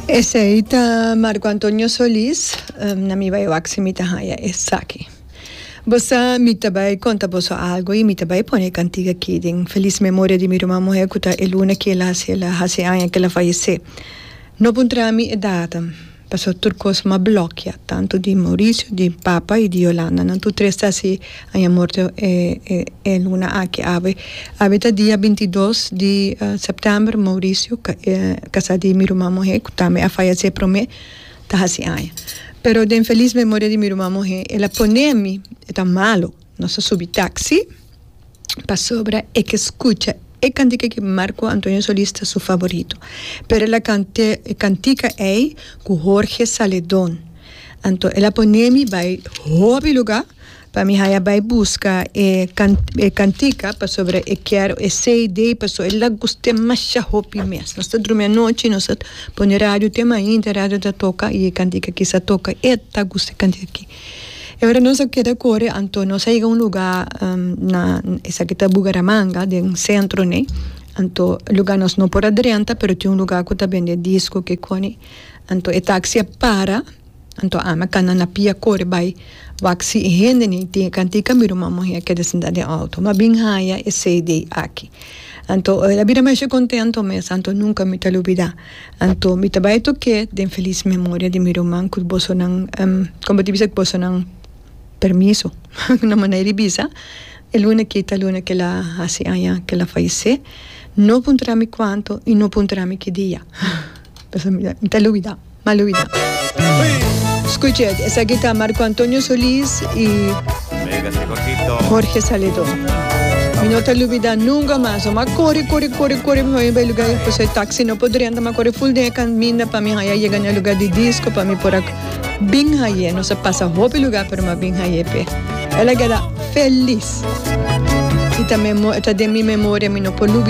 Esei ta Marco Antonio Solis, na mi bai wak si mi ta haya esaki. Bo sa, mi ta bai konta boso algo i mi ta bai pone e kantiga aki den Felis Memoria di mi ruman muhé ku ta Eluna Kiela si el a hasi aña ku el a fayesé. No puntra mi e data. Paso tur cos m'a blokia tanto di Mauricio di papa y di Yolanda nan tur tres ta si aña morto e e luna aki awe awe ta dia binti y dos di september Mauricio casa di mi ruma muhe cu tambe a fayece prome ta haci aña pero den feliz memoria di mi ruma muhe el a pone mi e ta malo. Nos a subi taxi pasobra e ke skucha e kantika ki Marco Antonio Solis ta su favorito. Pero el a kant'é e kantika ei ku Jorge Saledon. Anto el a pon'é mi bai hopi lugá pa mi haya bai buska e e kantika pasobra e kèr e CD paso el a gust'é masha hopi mes. Nos ta drumi anochi nos a pone radio te mainta radio ta toka i e kantika ki sa toka e ta gusta e kantika ki. E ora nos a keda kore anto nos a yega un luga na esaki ta Bugaramanga den centro ne anto e luga nos no por a drenta pero tin un luga ku ta bende disco ke koni anto e taxi a para anto ami a kana na pia kore bai wak si e hende ne tin e kantika mira un mamohia keda sinta den auto mi a bin haya e cd aki anto el a bira masha contento mes anto nunca mi ta lo bida. Anto mi ta bai toke den felis memoria di mi ruman ku bosonan kompa di bisa ku bosonan permiso na manera di bisa e luna kita luna ke la hasi aña ke la fayese no puntra mi kuanto i no puntra mi ki dia pasobra mi ta mi ta luida mal luida skucha esaki ta Marco Antonio Solis i. Jorge Saledó. Mi no ta lubidá nunga mas lo mas kore kore kore kore mi haña bai e lugá pasobra e taksi no por drenta mi a kore ful den e kaminda pa mi haña yega na e lugá di disko pa mi por a bin hañ'é nos a pasa hopi lugá pero mi a bin hañ'é p'e el a geda felis y ta e ta den mi memoria mi no por lubidá.